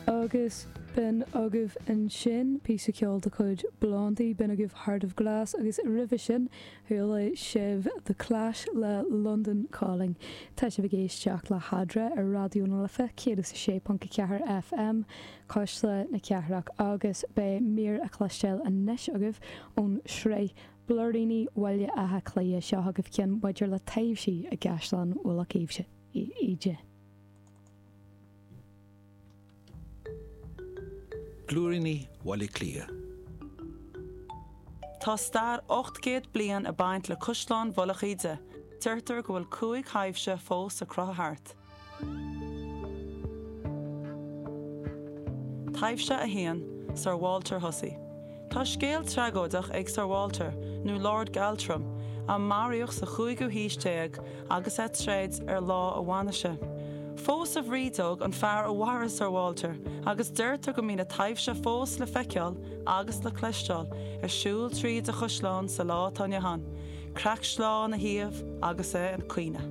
Agus b'in agaibh ansin píosa ceoil de chuid Blondie, b'in agaibh Heart of Glass agus roimhe sin chuala sibh The Clash le London Calling. Tá sibh ag éisteacht le hEadra ar Raidió na Life 106.4 FM, Cuisle na Cathrach, agus beidh mír a chloisteáil anois agaibh ón sraith Blúiríní Bhaile Átha Cliath seo agaibh cionn maidir le taibhsí i gCaisleán Mhullach Íde. Blúiríní Bhaile Átha Cliath. Tá stair 800 bliain ag baint le Caisleán Mhullach Íde. Deirtear go bhfuil cúig thaibhse fós ag crochadh thart. Taibhse 1, Sir Walter Hussey. Tá scéal tragóideach ag Sir Walter, nó Lord Galtrim, a maraíodh sa chúigiú haois déag agus é ag troid ar lá a bhainise. Phós a bhrídeog an fear a mharaigh Sir Walter agus deirtear go mbíonn a taibhse fós le feiceáil agus le cloisteáil ar siúl tríd an chaisleán sa lá atá inniu ann, créacht sleá ina thaobh agus é ag caoineadh.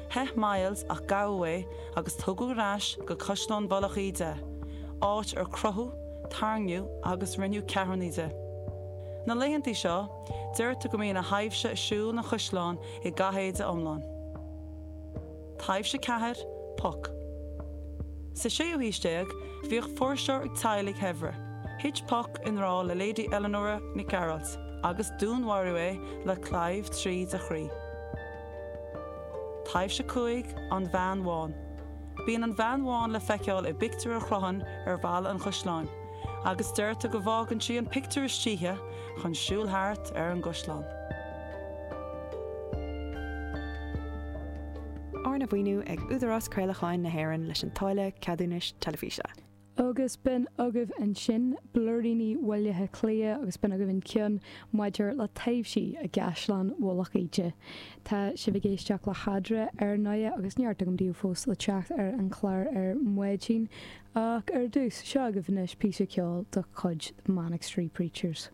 Theith Myles ach gabhadh é agus tugadh ar ais go Caisleán Mhullach Íde, áit ar crochadh, tarraingíodh agus rinneadh ceathrúnaí de. Na laethanta seo, deirtear go mbíonn a thaibhse ag siúl ina chaisleán i gcathéide iomlán. Taibhse 4, Puck. Sa séú haois déag, bhíodh fuirseoir ag teaghlaigh shaibhre. Thit Puck i ngrá le Lady Eleanora Nic Gearailt agus dúnmharaíodh é le claíomh tríd a chroí. Taibhse a Cúig, An Bhean Bhán. Bíonn an bhean bhán le feiceáil i bpictiúr a chrochann ar bhalla an chaisleáin, agus deirtear go bhfágann sí an pictiúr istoíche chun siúl thart ar an gcaisleán. Arna mhaoiniú ag Údarás Craolacháin na hÉireann leis an táille ceadúnais teilifíse. Agus b'in agaibh ansin blúiríní Bhaile Átha Cliath agus b'in agaibh an ceann maidir le taibhsí i gCaisleán Mhullach Íde. Tá sibh ag éisteacht le hEadra, ar ndóighe, agus neart agam daoibh fós le teacht ar an chlár ar maidin, ach ar dtús, seo agaibh anois píosa ceoil de chuid The Manic Street Preachers.